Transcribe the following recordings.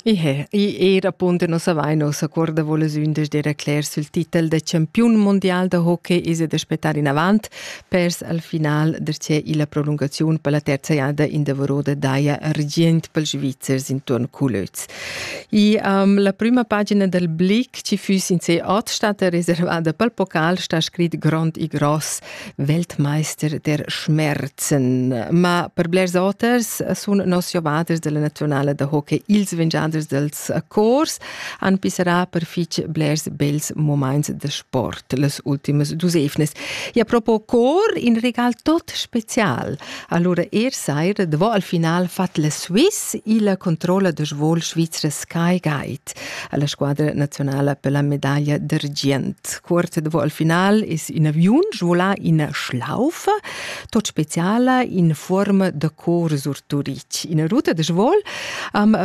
I he, i era punte no savai no s'accorda voles ün des dera cler sul titel de champion mondial de hockey is de spetar in avant pers al final der c'è illa prolungaziun per la terza jada in de Vorode daia argient per Svizzers intorn Culöz. I um, la prima pagina del Blick ci füs in se ot stata reservada pel pocal sta scrit grond e gross Weltmeister der Schmerzen. Ma per blers oters sun nos giovaders della nazionale da hockey ils vingiaders dels cors han pissarà per fich blers bels moments da sport las ultimas dus evnas. E a propos cor, in regal tot special. Allora er saira, davo al final fat la Swiss il controlla de svol Svizra Sky Guide. alla squadra nazionala per la medaglia d'argient. Quart davo al final es in aviun svola ina schlaufa, tot speciala in forma da cor surturic. Ina ruta de svol am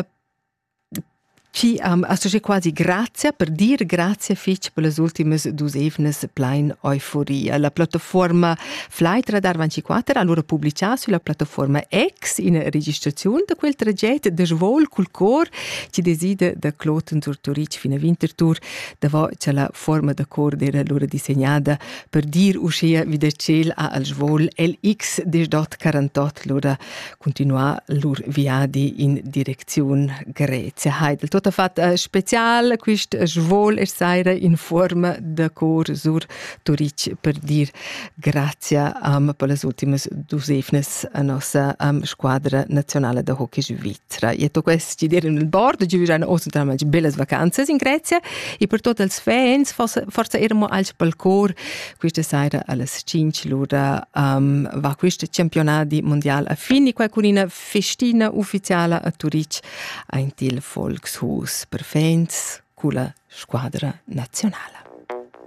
ci am associé quasi grazie per dire grazie fitch per las ultimas dus evnes plein euforia. La plattaforma Flightradar 24 ha allora pubblicato sulla plattaforma X in registrazione da quel tragetto de svol col cor chi decida da Kloten sur Turitg fin a Winterthur, davant cha la fuorma da cor d'eira lura disegnada per dir uschea vi da tschel a al svol LX desdot 48 lura continuar lur viadi in direcziun Grezia. Heidel, tot ha fat eh, special quist svol e saira in fuorma da cor sur Turitg per dir Grazia um, per las ultimas dus evnas a nossa um, squadra nazionale da hockey svizra. E to quest dir in il board, giu jan osen tramage bellas vacanzas in Grecia e per tot els fans forza ermo als palcor questa sera alles 5 l'ora um, va quest campionat di mondial a fini qua con una festina ufficiale a Turic ein il Volkshuus per fans culla squadra nazionale.